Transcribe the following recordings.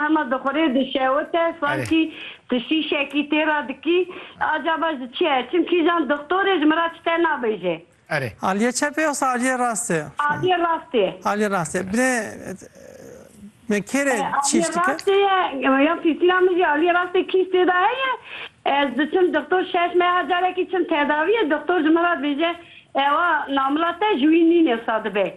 Hema dixwire dişewite sankî tu şîşekî tê re dikî. Acaba ji çi ye? Çimkî îjan dixtorê ji min re çi te nabêje. Erê. Aliyê çep ê yoxsa aliyê rast ê? Aliyê rast ê. Aliyê rast ê. Binê me kêr ê çîş dike? Aliyê rast ê ye. Ya pîsîna min jî aliyê rast ê kîş tê de heye. Ez diçim dixtor şeş meha carekî çim tedawiyê dixtor ji min re dibêje ewa namila te ji wî nîn êwsa dibe.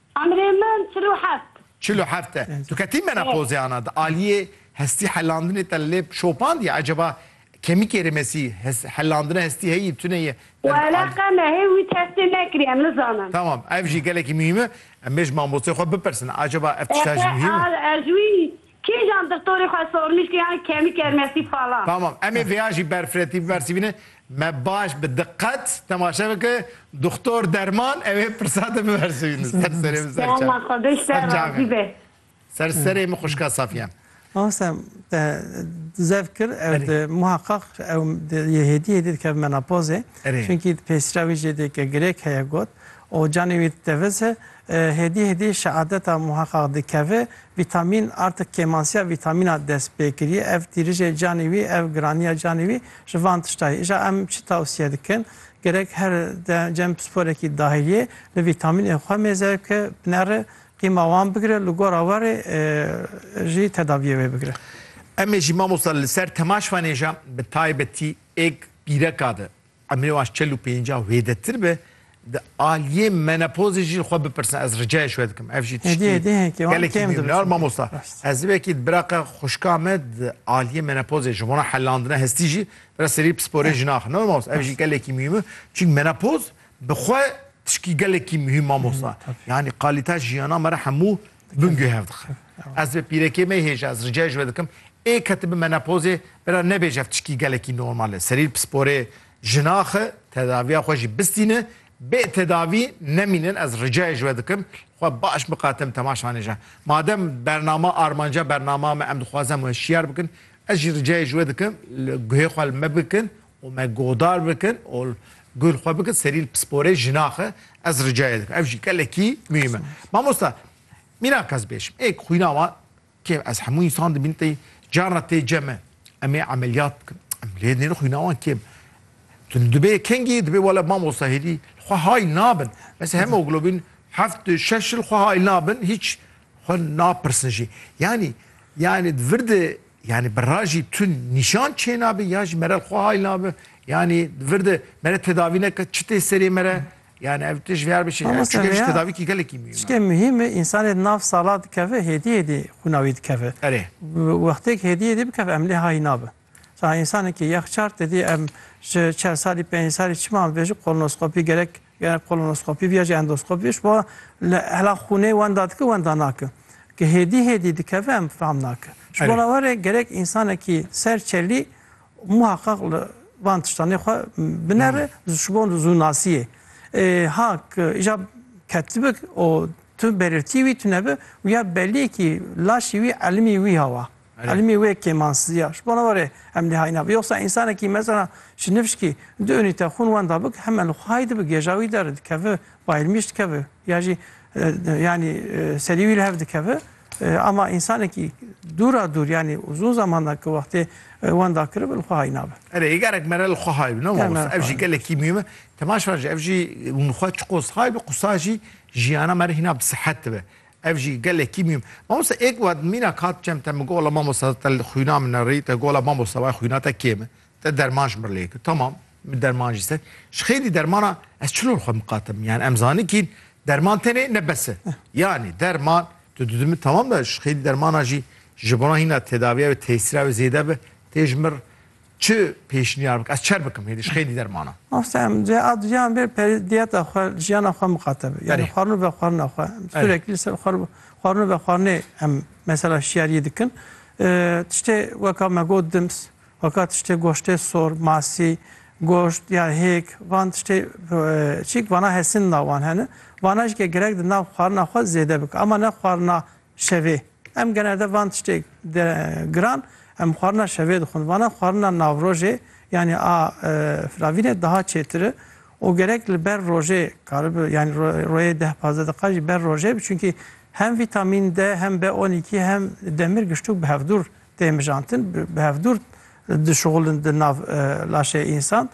Emrê min çil û heft. Çil û heft e. Tu ketî menopozê ana di aliyê hestî helandinê te li lêv şopandiye eceba kemîkê rêmesî helandina hestî heyî tune ye? Wele qeme hê wî testê nekiriye em nizanin. Tamam ev jî gelekî muhîm e. Em bê ji mamosteyê xwe bipirsin eceba ev tişta jî muhîm e? Ez wî Kîjan dixtorî xwe sormîşkê yan kemî kermesî fala. Tamam emê vêya jî berfireti biversivîne me baş bi diqet temaşe bike dixtor derman evê pirsa de biversivîne ser serê min ser çav ser çavê min ser serê min xwişka Safiyan. Mamaste te zev kir ew di muheqeq ew yê hêdî hêdî dikeve menopozê. Çunkî di pêsîra wî jê dê ke girêk heye got o canê wî teviz e Hêdî hêdî şeadeta muheqaq dikeve. Vîtamîn artik kêmansiya vîtamîna dest pê kiriye. Ev tîrijê canê wî, ev giraniya canê wî ji van tişta ye. Îja em çi tewsiye dikin? Gerek her cem pisporekî dahiliyê li vîtamînên xwe mêze bike, binere, qîma wan bigire, li gora warê jî tedaviyê wê bigire. Em ê jî mamosta li ser temaşvanê ja bi taybetî êk bîreka de Emrê wan ji çel û pêncah û hêdetir be, di aliyê menopozê jî li xwe bipirsin, ez ricayê ji we dikim. Ev jî tiştî gelekî newnar mamosta. Ez wekî di biraqa xwişka me di aliyê menopozê ji bona helandina hestî jî bira serî pisporê jin axin. Newna mamosta ev jî gelekî muhîm e. Çîn menopoz bi xwe tişkî gelekî muhîm mamosta. Yanî qalîta jiyana me re hemû Bingê hev dixin. Ez bi pîrekê me hêja ez ricayê ji we dikim ê ketibin menopozê bira nebêje ev tişkî gelekî normal e. Serî li pisporê jinaxi tedaviya xwe jî bistîni bê tedavî nemînin ez ricayê ji we dikim xwe baş biqatim temaşanêje. Madem bernama armanca bernama me em dixwazem we şiyar bikin ez jî ricayê ji we dikim li guhê xwe li me bikin û me guhdar bikin û guh li xwe bikin serî li pisporê jinaxe ez ricayê dikim ev jî gelekî muhîm e. Mamosta mîna kes bêjim êk xwîna wan kêm ez hemû însan dibîn tê carna tê cem e em ê emeliyat bikin em lê nêne xwîna wan kêm Tu dibê kengî dibê wele mamosta hêdî li xwe hayl nabin mes hemoglobîn heft û şeş li xwe hayl nabin hîç xwe napirsin jî yanî yanî vir di Yanî bi ra jî tund nîşan çênabe yan jî mere li xwe hayl nabe. Yanî vir de mere tedavî neke çi tê serê mere. Yanî ev tişt vêyar bişê. Ev Mamoste çû gelî ji vêya tedavîkî gelekî mihîm e. Tiştê mihîm e însanê di nav sala dikeve hêdî hêdî xwîna wî dikeve. Erê. Bi wextêk hêdî hêdî bikeve em lê hayî nabin. Mesela însanekî yexçar tedî em ji çar salî pêncî salî çima em dibêjin kolonoskopî gerek Gerek kolonoskopî bîya jî endoskopî ji bo li hela xûnê wenda dike wenda nake. Ke hêdî hêdî dikeve em fam nake. Ji bo re were gerek însanekî ser çelî muheqeq li van tiştanê xwe binere ji bo zû nasiyê. Ha ke îja ketibik û tu berirtî wî tune bi wîya beliyekî laşî wî elmî wî hawa. Elmî wê kêmansîziya ji bo ne were em nihayîna bi yoksa însanekî mesela ji nifşkî du unîte xûn wenda bik heme li xwayî dibi gêja wî der dikevi bayilmî ji dikevi ya jî yanî serî wî li hev dikevi ama însanekî dûra dûr yanî uzûn zaman da ki wextê wenda kiribi li xwe hay nabe. Erê yê gerek mere li xwe hay bi ne mamosta ev jî gelekî mîme temaşan jî ev jî hûn xwe çiqos hay bi qusa jî jiyana me re hîna bi sihet dibe. Ev jî gelekî mîm. Mamoste êk wat mînak hat çem te min got wala mamoste te li xwîna min ne rî te got wala mamoste waya xwîna te kêm e te derman ji min lê kir tamam min derman jî ser ji xêrî dermana ez çilor xwe miqatim yani em zanikîn derman tenê ne bes e yani derman tu didu min tamam da ji xêrî dermana jî ji bona hîna tedavîya wê tesîra wê zêde bi tê ji mir Çi pêşniyar bikim? Ez çer bikim hêdî ji xêdî dermana? Mafsem, cihê aduyan bê perê diyeta xwe, jiyana xwe mixate be. Yani xwarin û vexwarina xwe. Surekî li ser xwarin û vexwarinê em mesela şiyariyê dikin. Tiştê weka me got dims, weka tiştê goştê sor, masî, goşt ya hêk, van tiştê çîk vana hesindina wan hene. Vana jî ke girek di nav xwarina xwe zêde bike. Ema ne xwarina Şevê. Em generde van tiştê giran em xwarina şevê dixwin. Vana xwarina navrojê yanî a firavînê daha çêtir i û gerek li ber rojê karibi yanî royê deh pazdeh deqiqa jî ber rojê bi çunkî hem vîtamîn D hem B on îkî hem demir giştûk bi hevdûr tên mijantin bi hevdûr dişuxulin di nav laşê însan.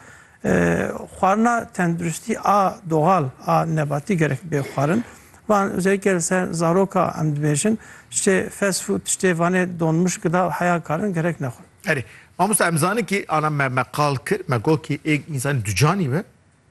Xwarina tenduristî a doxal a nebatî gerek bê xwarin. Van özellikle li ser zaroka em dibêjin ştê fast food tiştê vanê donmuş gıda û heya karin gerek nexwin. Erê, mamosta em zanin kî ana me me qal kir, me got kî ê însanî ducanî be.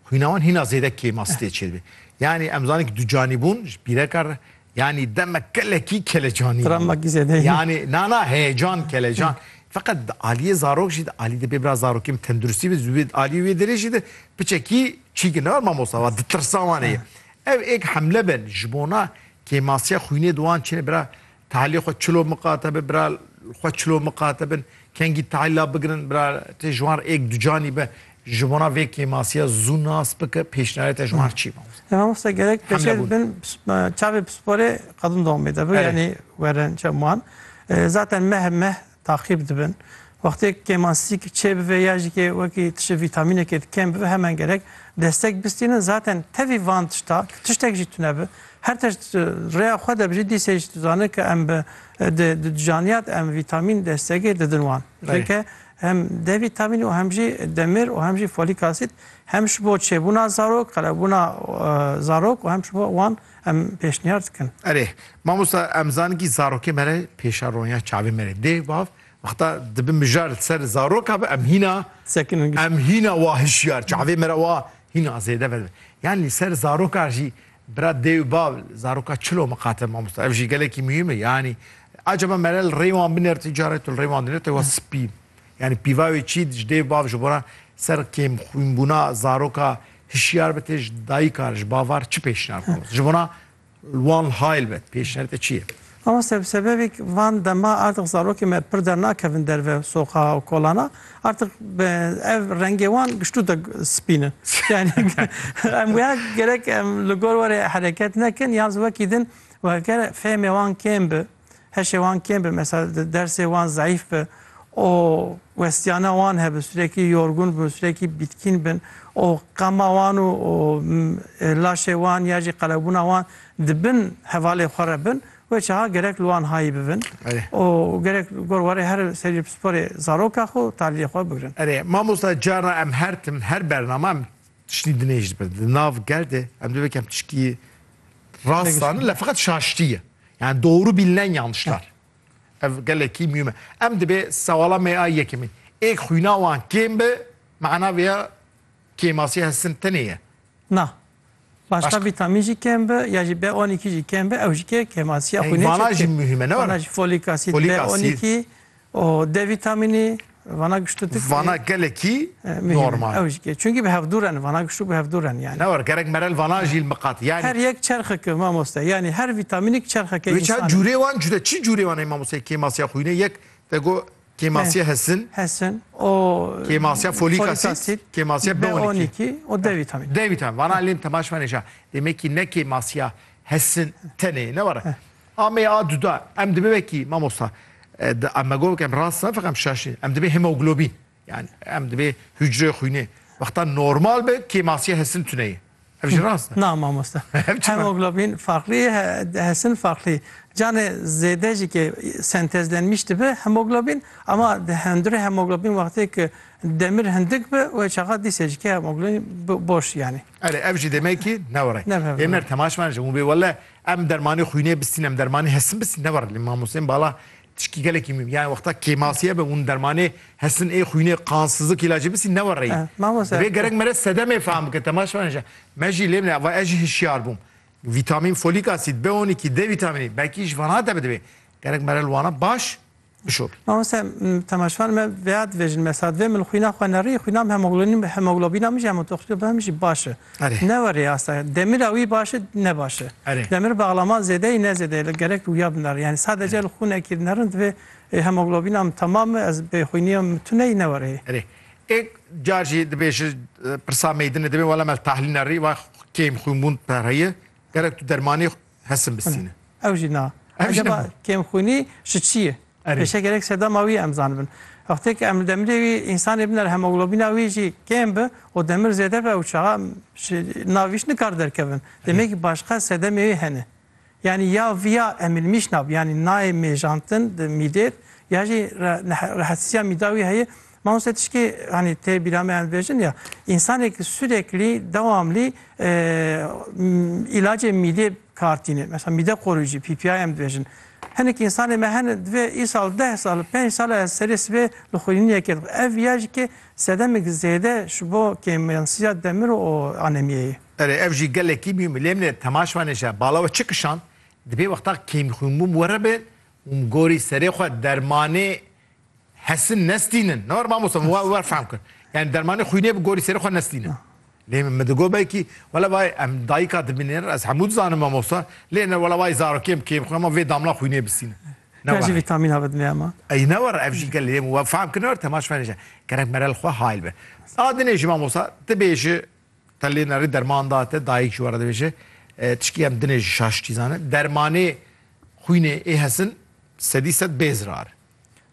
Xwîna wan hîna zêde kêma stê çêdibê. Yanî em zanîn ku du canî bûn ji pîreka re yanî demek gelekî kelecanî bû. Travmakî zêde ye. Yanî na na heyecan kelecan. Feqet di aliyê zarok jî de alî de bê bira zarokê min tenduristî be ji aliyê wê derê jî de piçekî çîkir ne war mamosta war ditirsa wan heye. Ev êk hemle be ji bona kêmasiya xwînê di wan çêne bira Tahlî xwe çilo miqate bi bira xwe çilo miqate bin kengî tahla bigrin bira tê ji wan êk ducanî be ji bona vê kêmasiya zû nas bike pêşniyarêta ji wan çî mamoste. Em mamoste gerek peşê dibin çavê pisporê qedin domê de bi yanî werin çem wan zaten meh meh taqîb dibin. Wextê kêmansîk çêbive ya jî ke wekî tiştê vîtamînekê di kêm bibe heman gerek destek bistînin. Zaten tevî van tişta tu tiştek jî tune bi her tişt rêya xwe de bijî dîsê jî tu dizane ke em bi di di canîya de em vîtamîn destekê didin wan. Rêke hem D vîtamînî û hem jî demir û hem jî folîk asîd hem ji bo çêbûna zarok, qelebûna zarok û hem ji bo wan Em pêşniyar dikin. Erê, mamosta em zaninkî zarokê me re pêşa ronya çavê me re dê bav wexta dibi mijar li ser zaroka bi em hîna Sekiningî. em hîna wa hişyar çavê me re wa hîna zêde ver. Yan li ser zaroka jî bira dê û bav zaroka çilo miqate mamosta. Ev jî gelekî muhîm e yanî. Acaba me re li rê wan binêr tu care tu li rê wan dinêr te wa spî. Yanî pîva wê çî ji dêv bav ji bona ser kêmxwînbûna zaroka hişyar bi tê ji dayikar ji bavar çi pêşniyar mamosta? Ji bona wan hayl be pêşniyarê te çi ye? Mamosta bi sebebê van dema artix zarokê me pir dernakevin derve soqa û kolana artix ev rengê wan giştû de spîn in. Yanî em wê gerek em li gor were hereket nekin yan zî wekî din wekere fêhmê wan kêm bi. Heşê wan kêm bi mesela dersê wan zayıf bi o westiyana wan hebi sürekli yorgun bin sürekli bitkin bin o qama wan û laşê wan ya jî qelebûna wan di bin hevalê xwe re bin wê çaha gerek li wan hayî bibin û gerek gor warê her serî pisporê zaroka xwe û talîyê xwe bigirin. Erê mamosta cara em her tim her bername em Tiştî di nêj dibe. Di nav gel de em divê kem tişkî rast zanin le feqet şaştî ye. Yani doğru bilinen yanlışlar. Ev gelekî mühim e. Em dibê sewala me a yekemîn. Ê xwîna wan kêm be, mana vê ya kêmasî hestin tenê ye. Na. Başka, Başka. vitamin jî kêm be ya jî B12 jî kêm be ew jî kê kêmasiya xwînê çêdike. Vana jî mühim e ne were? Vana jî folik asid, folik B12 O D vîtamînî vana giştu tu Vana gelekî normal. Ew jî çünkî bi hevdû re ne vana giştu bi hevdû re ne yani. Ne war gerek merel vana jî miqat yani. Her yek çerxeke mamoste yani her vîtamînik çerxeke insane. Wê çar cûrê wan cuda çi cûrê wan ê mamoste kêmasiya xwînê yek te go kêmasiya hesin. Hesin o kêmasiya folik asid kêmasiya B12 o D vîtamîn. D vîtamîn vana lêm temaşmenê ja demekî ne kêmasiya hesin tenê ne war. Amê a duda em dibe vekî mamosta em mego bikim rast ne feqem şaşî em dibê hemoglobîn yani em dibê hücre xwînê wexta normal be kêmasiye hesin tuneyê ev jî rast na mamosta hemoglobîn farqlî hesin farqlî canê zêde jî ke sentezlenmiş dibe hemoglobîn ama di hundirê hemoglobîn wextê ki demir hindik bi wê çaxa dîsê jî ke hemoglobîn boş yani. Erê ev jî demekî newre. Ê mer temaşman ji hûn bê wele Em dermanê xwînê bistîn, em dermanê hesin bistîn ne war lê mamosteyên bala tişkî gelekî mîm yani wexta kêmasiye be hûn dermanê hesin ê xwînê qansizlik îlacê bistîn ne war reyî. Divê gerek mere sedemê fehm bike temaşe bike ji me jî lê bine va ez jî hişyar bûm. Vîtamîn folîk asîd, B on îkî, D vîtamînî belkî ji vanan de bi divê gerek mere li wana baş Bişo. Mamoste temaşvan me veyad vejin mesad ve min xwîna xwe nerî xwîna hemoglobîn hemoglobîna min jî hemotoxîna min jî baş e. Ne werê asta demira wî baş e ne baş e. Demir bağlama zêdeyî ne zêdeyî li gerek wîya binar. Yani sadece li xûnekî binerin divê hemoglobîna min temam e ez bê xwîniya min tuneyî ne werê. Erê ê car jî dibêji pirsa meydinê dibê wela me li tahlîl nerî va kêm xwînbûn pereyê. Gerek tu dermanê hesin bisîne. Ew jî na. Ev jî ne. Kêmxwînî ji çi ye? Pêşe gerek sedema wî em zanibin. Wextê ku em li demirê wî însanê biner hemoglobîna wî jî kêm bi û demir zêde be ew çaxa ji navîş nikar derkevin. Demekî başqa sedemê wê hene. Yanî ya viya emilmîşna bi yanî nayê mêjantin di mîdêd ya jî rehetsîsiya mîda wî heye Mawse tişkî hanî tê bîra me em dibêjin ya însanêk sûreklî dewamlî îlacê mîdê kartîne. Mesela mîde qorûcî, PPI em dibêjin. Hinek însanê me hene divê îsal deh sal, pênc sal ez serê sibê li xwînînekê dixwim. Ev ya jî ke sedemek zêde ji bo kêmyansiya demir û anemiyê ye. Erê ev jî gelekî mî milêmne temaş vanê ji bala we çi kişand, dibê wexta kêmxwînbûn were be û gorî serê xwe dermanê Hesin nestînin. Ne war mamosta min wa wer fehm kir. Yani dermanê xwînê bi gorî serê xwe nestînin. Lê min mi digot belkî wela vay em dayîka dibînin ez hemû dizanim mamosta lê ne wela vay zarokê em kêm xwe ma vê damla xwînê bistînin. Ya jî vîtamîna bidime ema. Ey ne war ev jî gelê lê min wa fehm kir ne war temaş fenê je. Gerek mere li xwe hayl be. A dinê jî mamosta tu bêji te lê nerî derman da te dayîk ji we re dibêje tişkî em dinê jî şaş çî zanin dermanê xwînê ê hesin sedî sed bêzrar in.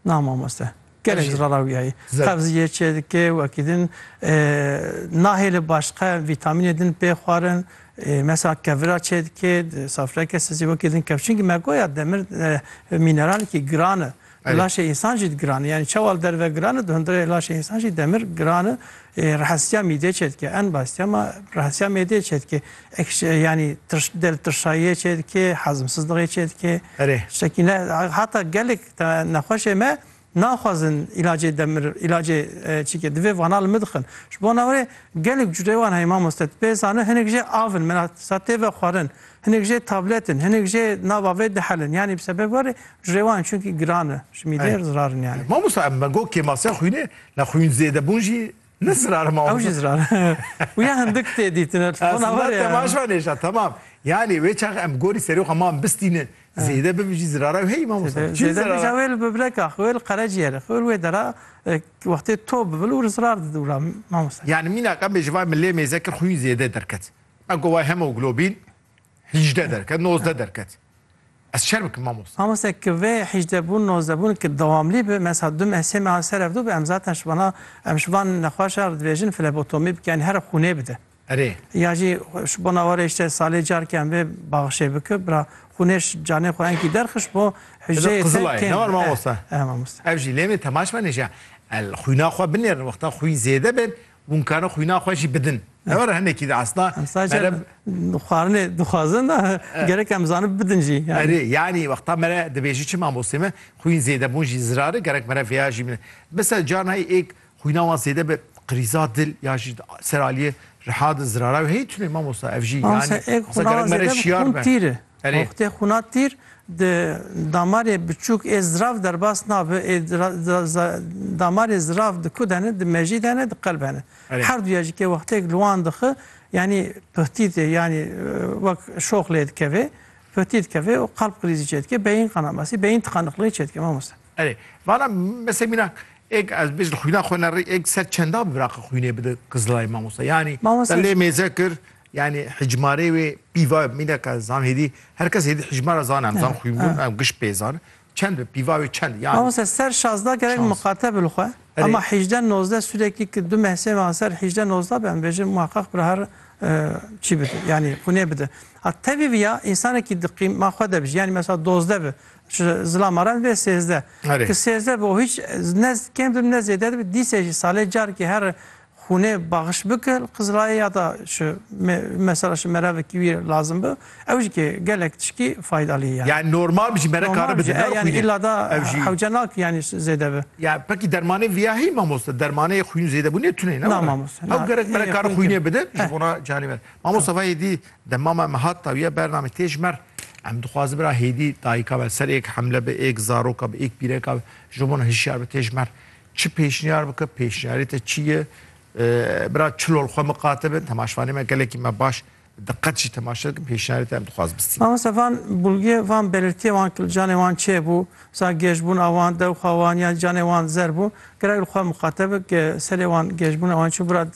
Na mamoste. Gelek zirara wî heye. Qevziyê çêdike û wekî din nahêle başqa vîtamînê din pê xwarin. Mesela kevira çêdike, safreke sizî wekî din kevşin ki me goya demir mîneralekî giran e. Laşê însan jî giran e. Yanî çewal derve giran e, di hundirê laşê însan jî demir giran e. Rehesîya mîdê çêdike en basîya ma rehesîya mêdê çêdike ekşe yanî tirş del tirşayîye çêdike hezmsizliğê çêdike Erê. tiştekî ne hata gelek te nexweşê me naxwazin îlacê demir îlacê çîke divê vana li min dixin. Ji bona wê gelek cureyê wan heye mamoste tu pê zane hinek jê av in mela sa tê ve xwarin hinek jê tablet in hinek jê nava vê dihelin yanî bi sebeba wê cureyê wan çunkî giran in ji mîdê zirar in yanî. Mamosta em me got kêmasiya xwînê. Nexwîn zêdebûn jî ne zirar ma. Ew jî zirar. Û ya hindik tê dîtin e telefona war e. Temaş va nêşa temam. Yanî wê çax em gorî serê xwe ma em bistînin. Zêde bibe jî zirara ew heyî mamosta. Zêde bije wê li bibreka xwe wê li qereciyerê xwe wê li wê dera wextê to bibe li wir zirar dide wira mamosta. Yanî mînak em bêjin vay min lê mêze kir xwîn zêde derket. Me got vay hemoglobîn. 18 derket, 19 derket. Ez şer bikim mamosta. Mamosta ki vê 18 bûn, 19 bûn ki dewamlî bi mesela du meh sê mehan ser evdû bi em zaten ji bana em ji van nexweş re dibêjin flebotomî bike yanî here xûnê bide. Erê. Ya jî ji bona were îşte salê carkê em vê baxişê bike bira xûnê ji canê xwe enkî derxist bo hicreyê te Qizilay, kêm ne var be. mamosta? Eh, eh, mamosta. Ev jî lê min temaş benê jî. El xwîna xwe binêrin wexta xwîn zêde bên Hûn karin xwîna xwe jî bidin. Ew re hinekî de esna mere xwarinê dixwazin da gerek em zanin bidin jî. Erê yanî wexta mere dibêjî çi mamostê me xwîn zêdebûn jî zirari gerek mere vêya jî min. Mesela carnayî êk xwîna wan zêde bi qirîza dil ya jî ser aliyê riha di zirara wê hey tunê mamosta ev jî yanî. Êk xwîna wan zêde bi xwîn tîri. Erê. Wextê xûna tîr di damarê biçûk ê zirav derbas nabe ê damarê zirav di ku de ne, di mejî de ne, di qelbe ne. Erê. Her duya jî ke wextêk li wan dixi yanî pihtî tê yanî wek şox lê dikeve, pihtî dikeve û qalb krîzî çê dike, beyîn qana masî, beyîn tiqaniqliyê çê dike mamoste. Erê. Vala mesela mîna êk ez bêj li xwîna xwe ne rê êk ser çenda bi viraqe xwînê bide Qizilay mamoste? Yanî te Mamoste lê mêze kir Yanî hicmarê wê pîva mîneke zan hêdî her kes hêdî hicmara zan em zan xwînbûn em giş pê zan çend bi pîva wê çend yanî. Mamoste ser şazda gerek miqate bil xwe ema hîjde nozde sûrekî ki du mehsê ma ser hîjde nozda be em bêjin muheqeq bi her çî bide yanî xwînê bide. A tevî viya însanekî di qîm ma xwe de bijî yanî mesela dozde bi zilama re bê sêzde ki sêzde bi o hîç ne kêm dibi ne zêde dibi dîsê jî salê carkê her Xûnê baxiş bike li Qizilayê ya ta şi mesela şi merevekî wî lazim bi ew jî kê gelek tişkî faydalî ye. Yani normal bijî mere kare bidin ne xwînê. Yani illa da hewce nake yani zêde bi. Ya pekî dermanê viya hî mamoste dermanê xwîn zêde bûnê tune ne. Na mamoste. Hew gerek mere kare xwînê bidin ji bona canê me. Mamoste va hêdî demama em hat dawiye bername tê ji mer em dixwazin bira hêdî dayika me ser êk hemle bi êk zaroka bi êk pîreka bi ji bo hişyar bi tê ji mer Çi pêşniyar bike, pêşniyarê te çi ye? Bira çil ol xwe miqate bin, temaşvanê me gelekî me baş diqet jî temaşe dikin, pêşniyarê te em dixwaz bistîne. Mamosta van bulgê, van belirtiyê wan ki li canê wan çê bû, za gêjbûna wan, dewxa wan yan canê wan zer bû, gerek li xwe miqate bik, serê wan gêjbûna wan çi bû, bira